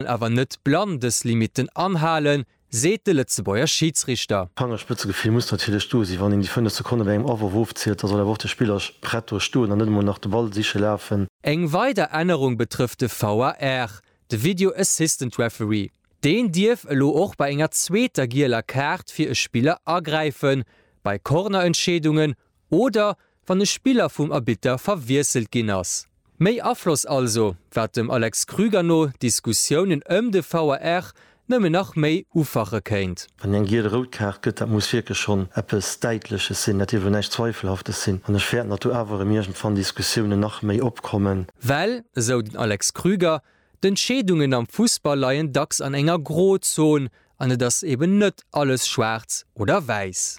well awer net blann dës Limitten anhalen, seet de Lëtzebuerger Schiidsrichter. D'Fangerspëtzegefill muss natierlech do sinn. Wann een déi 5 Sekonne bei engem Awworf ofzielt, da soll awer och de Spiller prett do stoen an net emol nach de Ball siche lafen. Eng weider Ännerung betrëfft de VAR, de Video Assistant Referee. Deen dierf elo och bei enger zweeter gieler Kaart fir e Spiller agräifen, bei Cornerentscheedungen oder wann e Spiller vum Arbitter verwiesselt ginn ass. Méi Afloss also, wat dem Alex Krüger no d'Diskussiounen ëm de VAR nëmmen nach méi ufache kéint. Wann een eng giel-rout Kaart gëtt, dat muss wierklech schonn eppes Däitleches sinn, dat dierf elo näischt Zweifelhaftes sinn. An ech fäerten, datt do awer erëm iergendwann Diskussiounen nach méi opkommen. Well, esou den Alex Krüger, d'Entscheedungen am Fussball leien dacks an enger Grozon an et ass eben net alles schwaarz oder wäiss.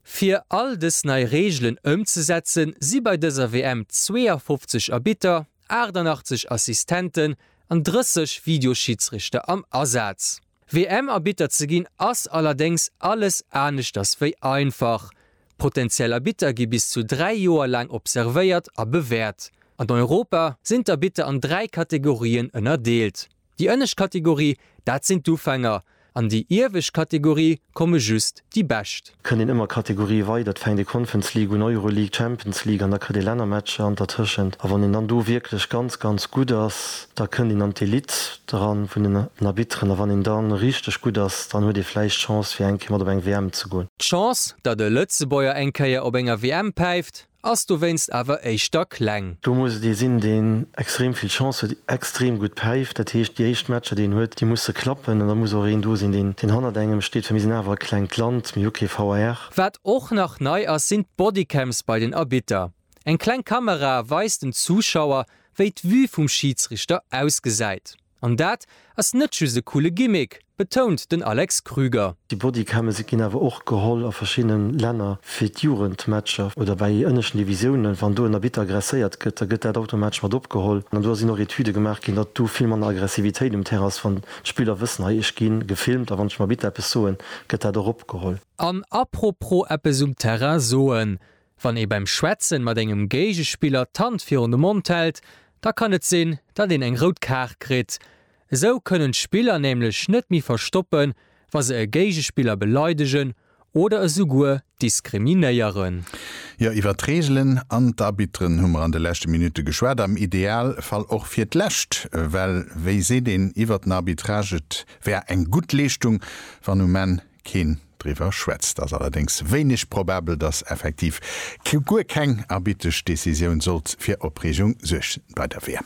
Fir all dës nei Reegelen ëmzesetzen, si bei dëser WM 52 Arbitter, 88 Assistenten an 30 Videoschidsrichter am Asaz. WM-Arbitter ze ginn ass allerdéngs alles aneschters wéi einfach. Potentiell Arbitter gi bis zu dräi Joer laang observéiert a bewäert. An Europa sinn d'Arbitter an dräi Kategorien ënnerdeelt. Déi ënnescht Kategorie, dat sinn d'Ufänger. An déi iewescht Kategorie komme just déi Bescht. Kënnt een ëmmer Kategorie weider, et fänkt ee Conference League un, Euroleague, Champions League an da kritt ee Lännermatcher an dertëschent. A wann een dann do wierklech ganz, ganz gutt ass, da kënnt een an d'Elite eran vun den Arbitteren. A wann een da richteg gutt ass, dann huet ee vläicht d'Chance fir eng Kéier mat op eng WM ze goen. D'Chance, datt e Lëtzebuerger eng Kéier op enger WM päift, Ass dowéinst awer éischter kleng. Do muss et ee sinn, deen extrem vill Chance huet, extrem gutt päift. Dat heescht, déi éischt Matcher, déi en huet, déi musse klappen. An da muss och een do sinn, deen hannert engem steet, well mir sinn awer e klengt Land, mir hu kee VAR. Wat och nach nei ass, sinn d'Bodycams bei den Arbitter. Eng kleng Kamera weist den Zuschauer, wéi d'Vue vum Schiidsrichter ausgesäit. An dat ass net just e coole Gimmick, betount den Alex Krüger. Déi Bodycams ginn awer och geholl a verschiddene Länner fir d'Jugendmatcher oder bei ënneschten Divisiounen. Wann do en Arbitter aggresséiert gëtt, da gëtt dat automatesch mat opgeholl. An do sinn och Etüde gemaach ginn, datt do vill manner Aggressivitéit um Terrain ass, wann d'Spiller wëssen, hei, ech gi gefilmt a wann ech dem Arbitter eppes soen, gëtt dat och opgeholl. An apropos eppes um Terrain soen, Wann ee beim Schwätzen mat engem Géigespiller d'Hand virun de Mond hält, da kann et sinn, datt een eng rout Kaart kritt. Esou kënnen d'Spiller nämlech net méi verstoppen, wa se e Géigespiller beleidegen oder esouguer diskriminéieren. Jo, iwwer d'Reegelen an d'Arbitren hu mer an de leschte Minutte geschwat, am Ideal Fall och fir d'lescht. Well wéi seet een iwwer den Arbitrage, et wär eng gutt Leeschtung, wann um Enn keen driwwer schwätzt, ass allerdéngs wéineg probabel, datt effektiv guer keng arbitresch Decisioun sollt fir Opreegung suergen bei der WM.